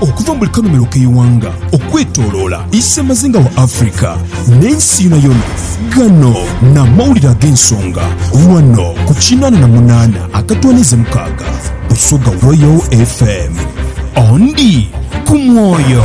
Okuva mu buli kanhumilo k'eighanga okwetoloola isemazinga wa Africa n'ensi yonayona, gano n'amawulire ag'ensonga ghano ku kinaana na munaana akatwaniiza mukaaga Busoga Royal FM. Ondi ku mwoyo.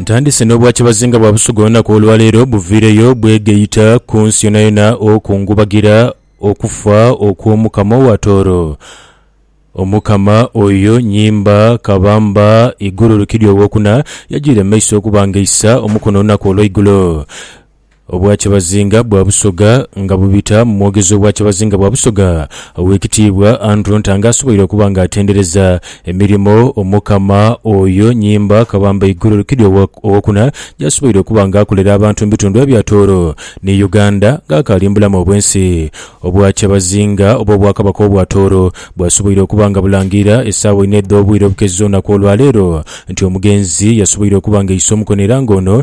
Ntandise n'obwa kibazinga bwa Busuga olunaku olwaleero buviireyo bwegeita ku nsi yonayona okungubagira okufa okw'Omukama owa Tooro. Omukama oyo nyimba kabamba igulu lukidi owokuna, yajiire mu maiso okubangaisa omukono olunaku olweigulo. Obwakyabazinga bwa Busoga nga bubita mu mwogezi w'Obwakyabazinga bwa Busoga Owekitiibwa Andrew Ntanga asoboire okuba nga atendereza emirimo Omukama Oyo Nyimba Kabamba Iguru Rukidi Owokuna gyasoboire okuba nga akolera abantu mu bitundu ebya Tooro ni Uganda nga akaali mu bulamu obwensi. Obwakyabazinga oba Obwakabaka obwa Tooro bwasoboire okuba nga bulangirira esaawa ina edh'obwire obukezi olunaku olwaleero nti omugenzi yasoboire okuba nga aise omukono era nga ono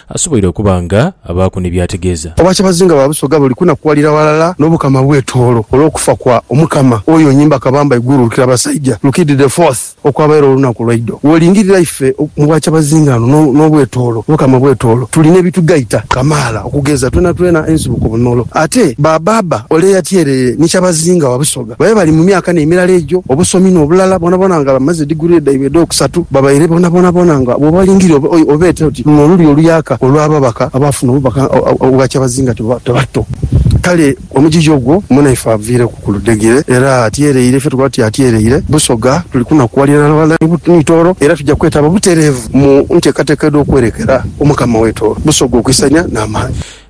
Asoboire okuba nga abaaku ni by'ategeeza. Obwakyabazinga bwa Busoga buli kunakuwalira ghalala n'Obukama bw'e Tooro olw'okufa kwa Omukama oyo Onyimba Kabamba Iguru Lukirabasaija, Lukidi the Fourth, okwabaire olunaku lwa idho. Bw'olingirira ife mu Bwakyabazinga no n'obw'e Tooro, Obukama bw'e Tooro, tulina ebitugaita kamaala. Okugeza, twenatwena ensibuko bunolo. Ate Baabaaba ole eyatyeereye ni Kyabazinga wa Busoga. babe bali mu myaka n'emirala egyo, obusomi n'obulala bwonabwona nga bamaze diguree dhaibwe edh'okusatu, babaire bonabonabona nga bw'obalingiria obeete oti luno luli oluyaka olw'ababaka abaafuna obubaka obwa kyabazinga tibato. Kale omugigi ogwo mwena ife aviireku ku ludhegere era atyereire, ife tukoba tuti atyereire Busoga, tuli kunakuwalira ghalala ni Tooro era tuja kwetaba butereevu mu nteekateeka edh'okwerekera Omukama w'e Tooro Busoga okwisania n'amaani.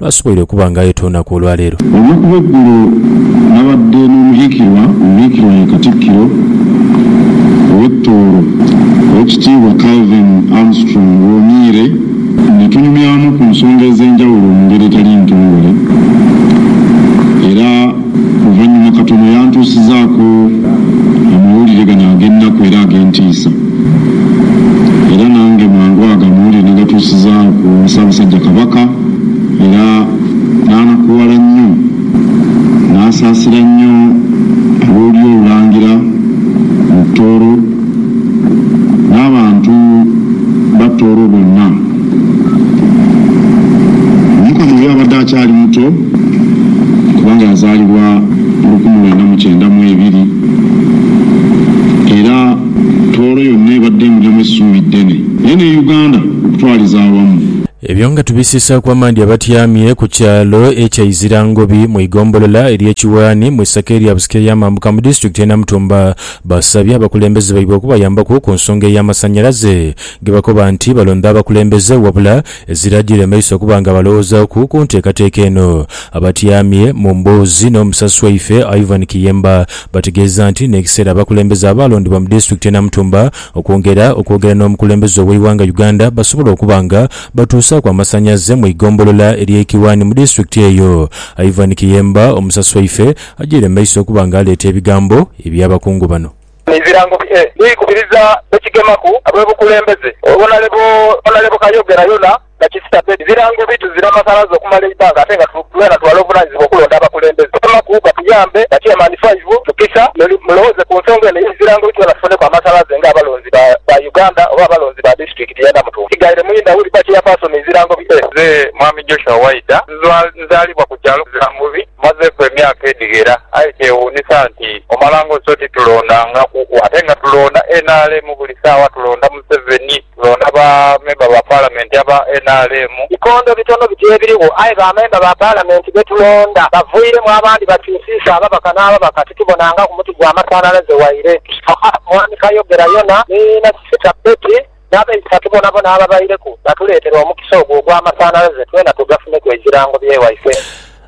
lw'asoboire okuba nga ayeta olunaku olwa leero. Eyo ku lw'eggulo nabadde n'omuhiikirwa omuhiikirwa ye Katikkiro ow'e Tooro, Owekitiibwa Calvin Armstrong Woniire ne tunyumyamu ku nsonga ez'enjawulo mu ngeri etali ntongole era luvannyuma katono yantuusizaako amawulire gano ag'ennaku era ag'entiisa era nange mangu ago amawulire nagatuusiza ku Ssaabasajja Kabaka. Era n'anakuwala nnyo, n'asaasira nnyo ab'olulyo olulangira mu Tooro, n'abantu ba Tooro bonna. Omukama oyo abadde akyali muto, kubanga yazaalibwa mu lukumi lwenda mu kyenda mu ebiri, era Tooro yonna ebadde emulyamu esuubi ddene, naye ne Uganda okutwaliza awamu. Ebyo nga tubisiisaaku amaadhi abatyamye ku kyalo ekya Izirangobi mu igombolola ery'e Kiwaani mu isaka erya Busike ey'amambuka mu disitulikiti y'e Namutumba basabye abakulembeze baibwe okubayambaku ku nsonga ey'amasanyalaze ge bakoba nti balonda abakulembeze wabula ezira jiremesa okuba nga balowoozaaku ku nteekateeka eno. Abatyamye mu mboozi n'omusasi waife Ivan Kiyemba bategeeza nti n'ekiseera abakulembeze abaalondebwa mu disitulikiti y'e Namutumba Okwongera okwogera n'omukulembeze ow'eighanga Uganda basobole okuba nga batuusaaku amasanyaze mu igombolola ery'e Kiwani mu disitulikiti eyo. Ivan Kiyemba omusasi waife agyaire mu maiso okuba nga aleeta ebigambo eby'abakungu bano. Ebirango bye bikubiriza be kigemaku ab'obukulembeze. Onalebo Kayogera yona. na Kisita Bedi birango bi tuzira masanaze okumala eibbanga ate nga twena twala obuvunanyizibwa okulonda abakulembeze. Twemaku batuyambe ba Chairman Five Tukisa muli mulowooze ku nsonga eno eye birango bi twena tufuneku amasanaze nga abalonzi ba ba Uganda oba abalonzi ba Disitulikiti ye Namutumba. Kigaire Muyinda Willy Ba Chairperson Ebirango bi e. Nze Mwami Joshua Waida. Nzwa nzaalibwa ku kyalo Kirambubi. Mmazeeku emyaka edhighera aye kyewuunisa nti omalanga oti so titulondangaku ate nga tulonda nrm buli saawa tulonda Museveni. Londa ba memba ba Palamenti aba nrm. Bikondo bitono biti ebirigho aye ba memba ba Palamenti be tulonda bavairemu abandi bakyusiisa ababaka n'ababaka titubonangaku muti gwa masanhalaze waire. Tusaba Mwami Kayogera yona ni Nasisita Betty n'abaisa tubona bona ababaireku batuleetere omukisa ogwo ogwa masanhalaze twena tugafuneku ebirango bye waife.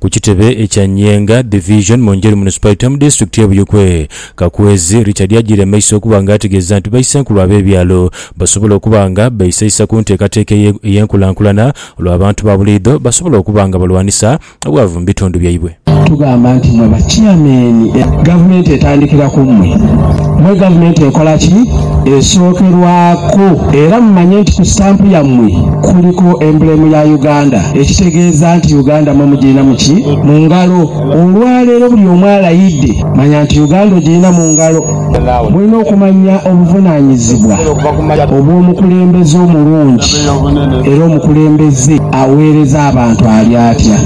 Ku kitebe ekya Nyenga Division mu Njeru Municipality mu Disitulikiti ye Buikwe, Kakwezi Richard agiire mu maiso okuba nga ategeeza nti baisenkulu ab'ebyalo basobola okuba nga beisaisa ku nteekateeka eye ey'enkulankulana olwo abantu ba buliidho basobola okuba nga balwanisa obwavu mu bitundu byaibwe. Tugamba nti mmwe ba Chairman, Gavumenti etandikira ku mmwe. Mwe gavumenti ekola ki? Esookerwaku era mumanye nti ku sitampu yammwe kuliku embulemu ya Uganda ekitegeeza nti Uganda mwe mugirina mu ki? Mu ngalo. Olwaleero buli omu alayidde manya nti Uganda ogirina mu ngalo. Mulina okumanya obuvunaanyizibwa obw'omukulembeze omulungi era omukulembeze aweereza abantu ali atya?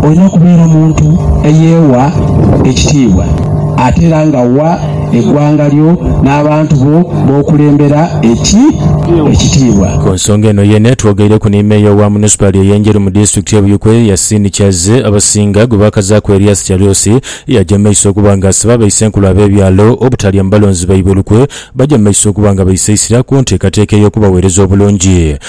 Olina kubeera muntu eyeewa ekitiibwa. Ate era nga wa eggwanga lyo n'abantu bo b'okulembera ekitiibwa. Ku nsonga eno yeene twogeireku ni Meeya owa Munisipaali eye Njeru mu disitulikiti ye Buikwe, Yasin Kyazze abasinga gwe baakazaaku Erias Kyalusi eyaja mu maiso okuba nga asiba abeise enkulu ab'ebyalo obutalya mu balonzi baibwe lukwe baja mu maiso okuba nga baisa eisira ku nteekateeka ey'okubaweereza obulungi.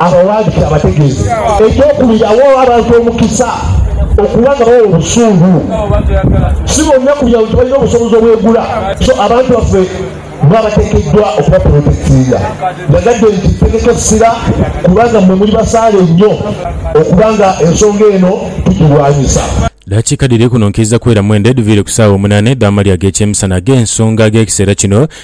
abawandiike abategeeze eky'okubirawo abantu omukisa okuba nga bawa obusuulu. Si bonna ku byaalo nti balina obusobozi obwegula, so abantu baffe bo abateekeddwa okubapolotekitinga. Yagadde nti, Tegeka essira kubanga mmwe muli basaale nnyo okuba nga ensonga eno tugirwanyisa. Daakiika dhiri kuno nkiiza kwera mwenda edhuviire ku saawa omunaana edh'amalya ag'ekyemisana ag'ensonga ag'ekiseera kino.